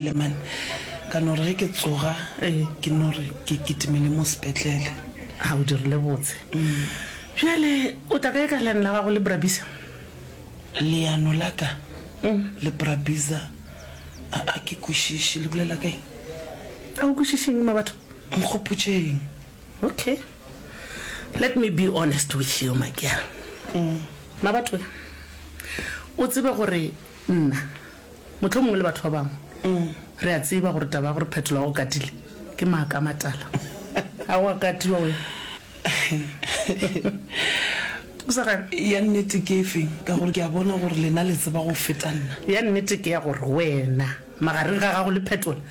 Leman, ka no re ge ke tsoga ke no re ke kitimele mo sepetlele. Ha o dirile botse. Bjale o tla kae ka leano la gago le Brabizza? Leano la ka le Brabizza? A ke kwešiše, le bolela ka eng? A o kwešiše eng, Mabatho? Nkgopotše eng? Okay, let me be honest with you, Makiara. Mabatho, o tsebe gore nna. Mohlomongwe le batho ba bangwe re a tseba gore taba ya gore Phetola wa go katile ke maaka a matala. A o a katiwa wena? O sa gane? Ya nnete ke efe? Ka gore ke a bona gore lena le tseba go feta nna. Ya nnete ke ya gore wena, magareng ga gago le Phetola,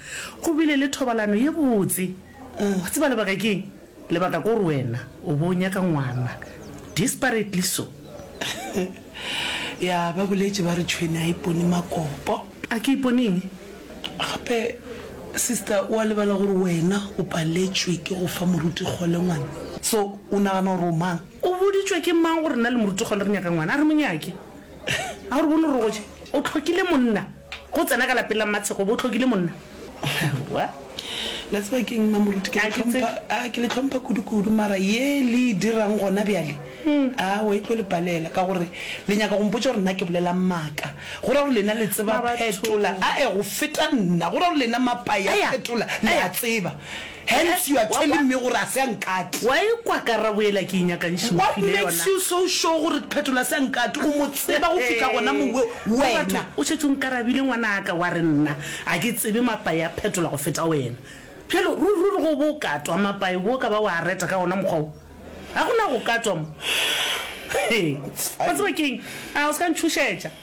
go bile le thobalano ye botse. O a tseba lebaka ke eng? Lebaka kore wena o bo o nyaka ngwana desperately so. Ya ba boletše ba re tšhwene a ipone makopo. A ke ipone eng? Gape sister o a lebala gore wena o paletšwe ke go fa moruti kgole ngwana. So o nagana gore o mang? O boditšwe ke mang gore nna le moruti kgole re nyaka ngwana? A re mo nyake. A o re bone gore o tlhokile monna ge o tsena ka lapeng la mmatshekgo o bo o tlhokile monna? Aowa. La tseba keng mma Moruti, ke le tlhompha, aa, ke le tlhompha kudu-kudu, mara ye le e dirang gona bjale, aowa, e tlo le palela, ka gore le nyaka go mpotša gore nna ke bolelang maaka. Go ra gore lena le tseba phetola, ae, go feta nna. Go ra gore lena mapa ya phetola le a tseba. Hence you are telling me gore a se a nkate. Wa e kwa karabo yela ke e nyakang she What mphile makes yona. you so sure gore Phetola a se a nkate? O mo tseba go fihla gona mowe Wa batho, wena? o šetše o nkarabile ngwanaka wa re nna a ke tsebe mapae a Phetola go feta wena. Bjalo ruri ruri go bo o katwa mapae bo ka ba wa a reta ka gona mokgwa wo? Ga go na go katwa mo. Wa tseba ke'ng? A o se ka ntšhošetša.